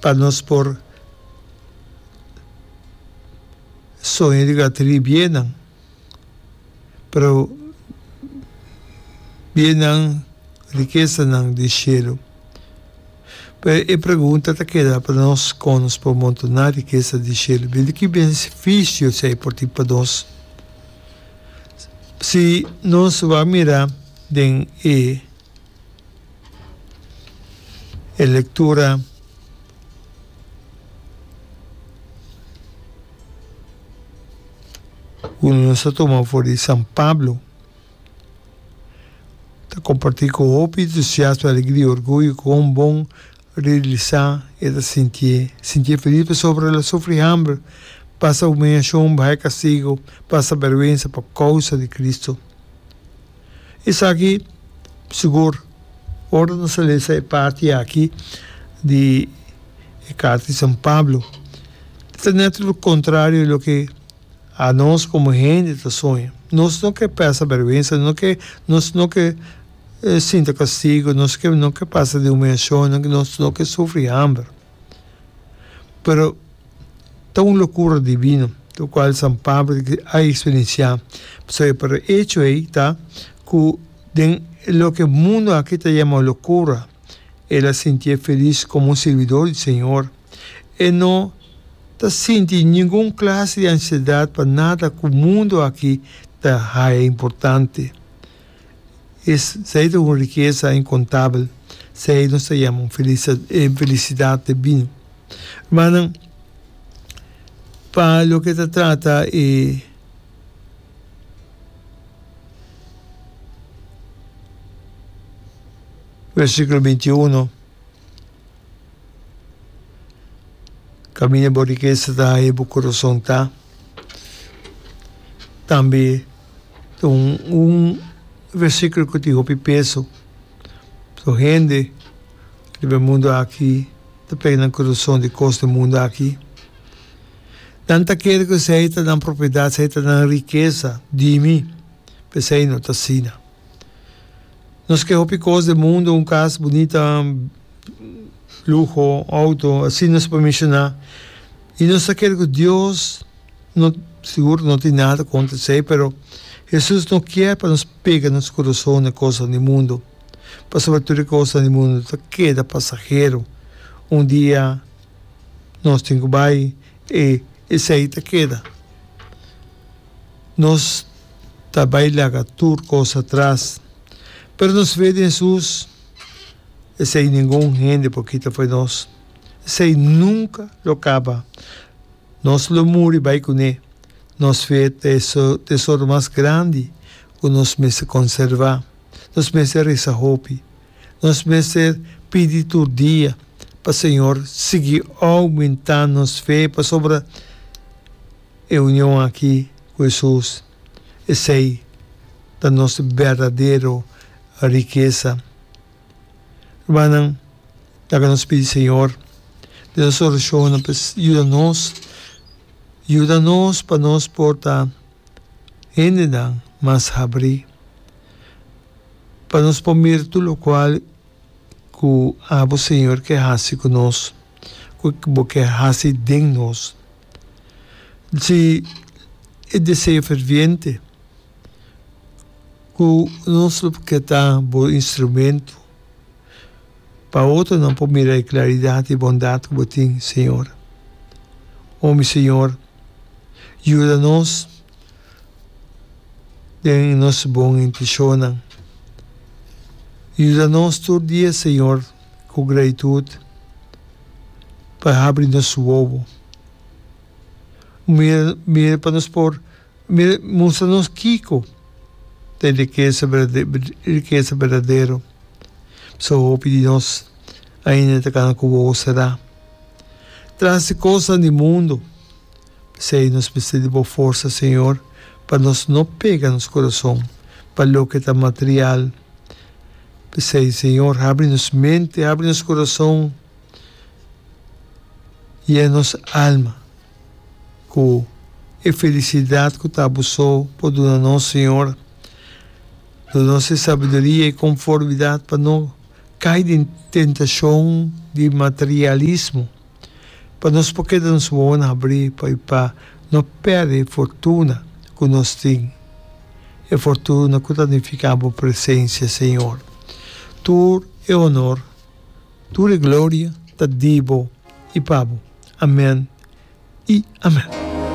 pa nos por soña di gata di bienan, pero bienan, rikesanan di shelu. Pero e pregunta ta keda pa nos, kon nos por montoná rikesa di shelu? Bién di ki benefisio esei por tin pa nos? Si nos lo a mira den e. E lectura cu nos a toma for di San Pablo ta comparti cu hopi entusiasmo, alegria, orgullo cu un bon realisa e ta sintié. Sintié feliz pasobra el a sufri hamber, pasa humillacion, baha e castigo, pasa berwensa pa causa di Cristo. Esaki sigur ora nos a lesa e parti aki di e carta di San Pablo ta net lo contrario di loke anos como hende ta soña. Nos no ke pasa berwensa, no ke nos no ke sinta castigo, nos no ke pasa de humiacion, nos no ke sufri hamber. Pero ta un locura divino lo cual San Pablo a experiencia pasobra por e hecho ey ta cu den loke e mundo aki ta yama locura el a sinti e feliz como un servidor di Señor. E no ta sinti ningun clase di ansiedad pa nada cu mundo aki ta haya importante. Es sey ta un rikesa inkontabel, sey nos ta yama un felisidat te bini. Rumannan, pa loke ta trata e versikulo binti uno, kaminda bo rikesa ta, ahi bo kurason ta. Tambe ta un un versiculo cu tin hopi peso. So hende riba e mundo aki ta pega nan corazon di cos den mundo aki. Nan ta kere cu esey ta nan propiedad, esey ta nan rikesa. Dimi? P'esey no t'asina. Nos ke hopi kos den mundu, un kas bunita, luho, outo, asina nos por menshoná. I nos ta kere ku Dios no, sigur no tin nada kontra esei, pero Hesus no kier pa nos pega nos kurason na kosnan di mundu, pasobra tur e kosnan di mundu ta keda pasahero. Un dia nos tin ku bai, i esei ta keda. Nos ta bai laga tur kos atras. Pero nos fe den Hesus, esei ningun hende por kita fo'i nos. Esei nunka lo kaba. Nos lo muri bai kuné. Nos fe ta e tesoro mas grandi ku nos mester konservá. Nos mester resa hopi. Nos mester pidi tur dia pa Señor sigui oumentá nos fe pasobra E union aki ku Hesus, esei ta nos berdadero rikesa. Rumannan, laga nos pidi Señor den nos orashonnan pa e yuda nos. Yuda nos pa nos por ta hendenan mas habrí, pa nos por mira tur lokual ku abo Señor ke hasi ku nos, ku bo ke hasi den nos. Si e deseo ferviente ku nos lo ke ta bo instrumento pa otronan por mira e claridad i bondad ku bo tin, Señor. O mi Señor, yuda nos den nos bon intenshonan. Yuda nos tur dia, Señor. ku gratitud pa habri nos wowo. Mira, mira pa nos por mira mustra nos kiko ta e rikesa berdadero, e rikesa berdadero. Pasobra hopi di nos ainda ta kana ku wowo será. Tras di kosnan di mundu. P'esei nos mester di bo forsa, señor, pa nos no pega nos kurason pa loke ta material. P'esei, Señor, habri nos mente, habri nos corazon y e nos alma cu e felicidad cu ta bo so por duna nos, Señor. Duna nos e sabiduria, e conformidad pa no cay den tentacion di materialismo. pa nos por keda nos wowonan habrí pa i pa no pèrdè e fortuna ku nos tin, e fortuna ku ta nifiká bo presensia, Señor. Tur e honor, tur e gloria ta di bo i pa bo. Amèn i amèn.